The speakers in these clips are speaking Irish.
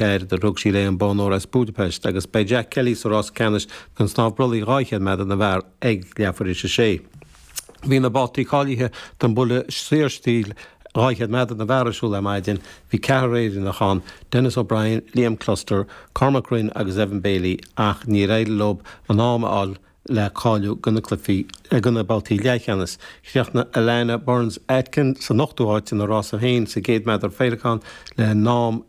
B'eard a rug sí léi an bonn óir as Budapest agus beidh Jack Kelly sa rás ceannais don snámh brollaigh 200 meadar na bhfear ag leathuair tar éis a 6. Bhí na babhtaí cáilithe don bhuille saorstíl 200 meadar na bhfear ar siúl ar maidin. Bhí ceathrar Éireannach ann, Denis O'Brien, Liam Cluster, Cormac Rynn agus Evan Bailey, ach níor éirigh leo an t-am a fháil le cáiliú do na cluichí do na babhtaí leathcheannais. Chríochnaigh Alana Burns Atkin san ochtú háit ina rása féin sa gcéad meadar féileacán le n-am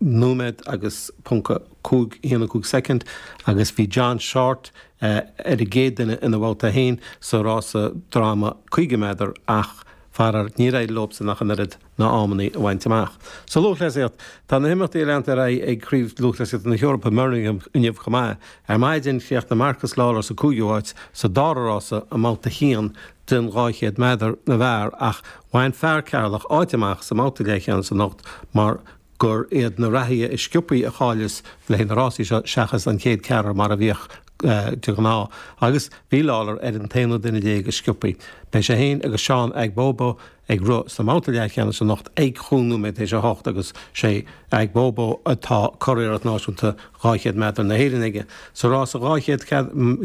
nóiméad agus ponc 5 1 5 soicind agus bhí John Shortt ar an gcéad duine ina bhabhta féin sa rása droma 50 meadar ach, faraor, níor éirigh leosan ach an oiread. na hamannaí a bhaint amach. Sa lúthchleasaíocht, tá na himeachtaí ag leanacht ar aghaidh ag Craobh Lúthchleasaíochta na hEorpa i mBirmingham inniu chomh maith. Ar maidin, chríochnaigh Marcus Lawler sa 5ú háit sa dara rása i mbabhta a haon den 200 meadar na bhfear ach bhain fear Ceatharlach áit amach sa mbabhta leathcheannais anocht mar gur iad na reathaithe is sciopthaí a cháileas le haghaidh na rásaí seo seachas an chéad ceathrar mar a bhíodh de ghnáth agus bhí Lawler ar an t-aonú duine déag is sciopthaí. Beidh sé féin agus Seán Aigboboh ag rith sa mbabhta leathcheannais anocht ag chúig nóiméad tar éis a hocht agus is é Aigboboh atá curiarracht náisiúnta 200 meadar na hÉireann aige. Sa rás 200,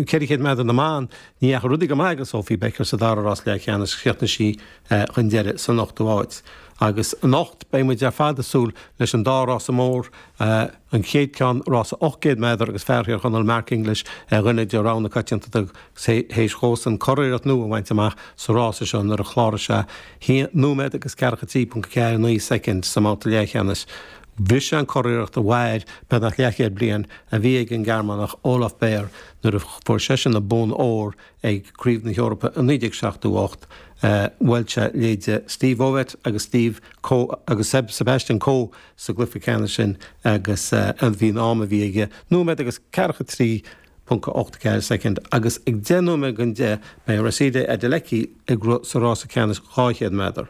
400 meadar na mban, ní dheachaigh rudaí go maith ag Sophie Becker sa dara rás leathcheannais, chríochnaigh sí chun deiridh san ochtú háit. Agus anocht beidh muid ar fad ag súil leis an dá rása mór, an chéad ceann rása 800 méadar agus fear Thír Chonaill Mark English ar dhuine de rogha na coitianta théis dhósan curiarracht nua a bhaint amach sa rása seo nuair a chláraigh sé 1 nóiméad agus ceathracha 3.49 soicind sa mbabhta leathcheannais Bhris sé an curiarracht a mhair beagnach leathchéad bliain a bhí ag an nGearmánach Olaf Beyer nuair a fuair seisean an bonn óir ag Craobh na hEorpa i 1978 Bhuail sé leithéide Steve Ovett agus Steve Coe agus Seb Sebastian Coe sa gcluiche ceannais sin agus bhí an am a bhí aige, nóiméad agus ceathracha 3.84 soicind agus ag deich nóiméad don deich beidh Rhasidat Adeleke ag rith sa rása ceannais 200 meadar.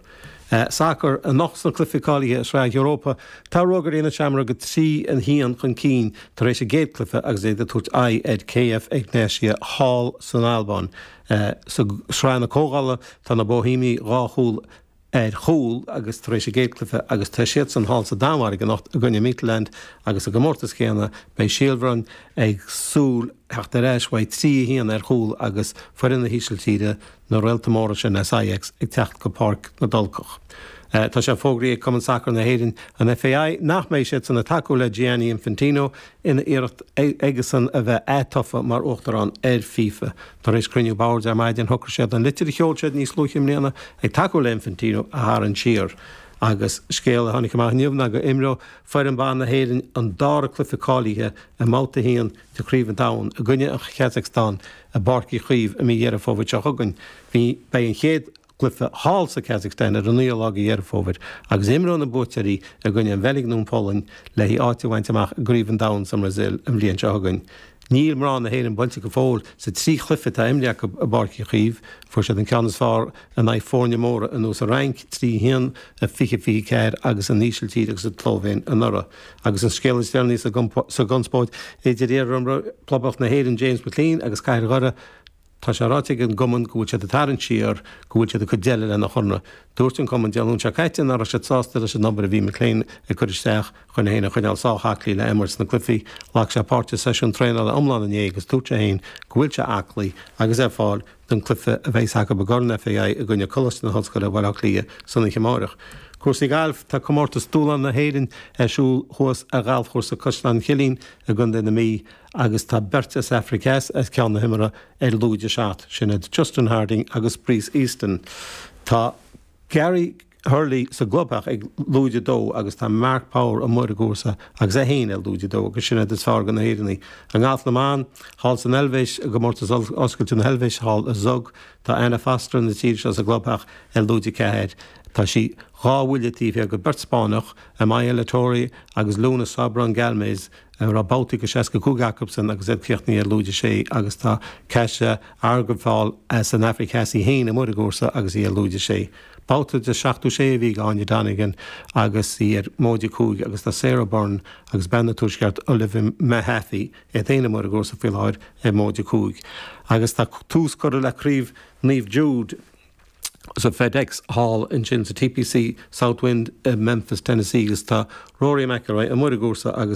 Sacar, Anocht sna cluichí cáilithe i Sraith Europa, tá Rógairí na Seamróige 3 1 chun cinn tar éis a gcéad cluiche agus iad ag tabhairt aghaidh ar KF Egnatia thall san Albáin. Sa Sraith na Comhdhála tá na Bóithéimigh dhá chúl ar chúl agus tar éis a gcéad cluiche agus tá siadsan thall sa Danmhairg anocht i gcoinne Midtjylland agus sa gcomórtas céanna beidh Síol Bhroin ag súil le theacht ar ais ó bheith trí, 1 ar chúl agus foireann na hÍsiltíre, na réalta móra sin as Ajax, ag teacht go Páirc na dTulcach. Tá sé fógraithe ag Cumann Sacair na hÉireann, an FAI, nach mbeidh siadsan ag tacú le Gianni Infantino ina iarracht aigesan a bheith atofa mar Uachtarán ar FIFA. Tar éis cruinniú boird ar maidin, shocraigh siad an litir a sheol siad níos luaithe i mbliana ag tacú le Infantino a tharraingt siar. Agus scéal a tháinig amach inniu ná go imreoidh foireann ban na hÉireann an dara cluiche cáilithe i mbabhta a haon de Chraobh an Domhain i gcoinne an Kazakhstan i bPáirc Uí Chaoimh i mí Dheireadh Fómhair seo chugainn. Beidh an chéad chluiche thall sa Kazakhstan ar an 9ú lá de Dheireadh Fómhair agus imreoidh na buaiteoirí i gcoinne an Bheilg nó an Pholainn le haghaidh áit a bhaint amach i gCraobh an Domhain sa mBrasil an bhliain seo chugainn. Níl mná na hÉireann buailte go fóill sa trí chluiche atá imrithe acu i bPáirc Uí Chaoimh. Fuair siad an ceann is fearr in aghaidh foirne móra ar nós an Fhrainc, 3 1 i 2024, agus an Ísiltír agus an tSlóivéin anuraidh. Agus an scéal is deireanaí sa gconspóid idir iar-imreoir Phoblacht na hÉireann James McClean agus Cathair Dhoire, Tá sé ráite ag an gcumann go bhfuil siad ag tarraingt siar, go bhfuil siad ag cur deireadh lena chonradh. Dúirt an cumann Dé Luain seo caite nach raibh siad sásta leis an obair a bhí McClean ag cur isteach chun é féin a choinneáil sách aclaí le imirt sna cluichí. Ghlac sé páirt i seisiún traenála iomlán inné agus dúirt sé féin go bhfuil sé aclaí agus ar fáil don cluiche a bheas acu i gCorn FAI i gcoinne Coláiste na hOllscoile Bhaile Átha Cliath san oíche amárach. Cúrsaí Gailf, Tá Comórtas Dúshláin na hÉireann ar siúl thuas ar ghalfchúrsa Caisleán Chillín i gContae na Mí, agus tá beirt as Aifric Theas ar cheann na himeartha ar lúide seacht, sin iad Justin Harding agus Bryce Easton. Tá Gary Hurley sa gclubtheach ag lúide dó agus tá Mark Power amuigh ar an gcúrsa agus é féin ar lúide dó agus sin iad is fearr de na hÉireannaigh. I ngalf na mban, thall san Eilvéis, i gComórtas Oscailte na hEilvéise thall i Zug, tá Anna Foster na tíre seo sa gclubtheach ar lúide ceathair. Tá sí dhá bhuille taobh thiar de beirt Spáinneach, Amaia Latorre agus Luna Sobrón Galmés, raibh babhtaí de 65 acubsan agus iad críochnaithe ar lúide sé agus tá Kajsa Arwefjäll as an Afraic Theas í féin amuigh ar an gcúrsa agus í ar lúide sé. Babhta de 76 a bhí ag Áine Donegan agus í ar móide cúig agus tá Sara Byrne agus bean an Tuaiscirt Olivia Mehaffey iad féin amuigh ar an gcúrsa faoi láthair ar móide cúig agus tá tús curtha le Craobh Naomh Jude sa Fedex thall ansin sa TPC Southwind i Memphis Tennessee agus tá Rory McIlroy amuigh ar an gcúrsa agus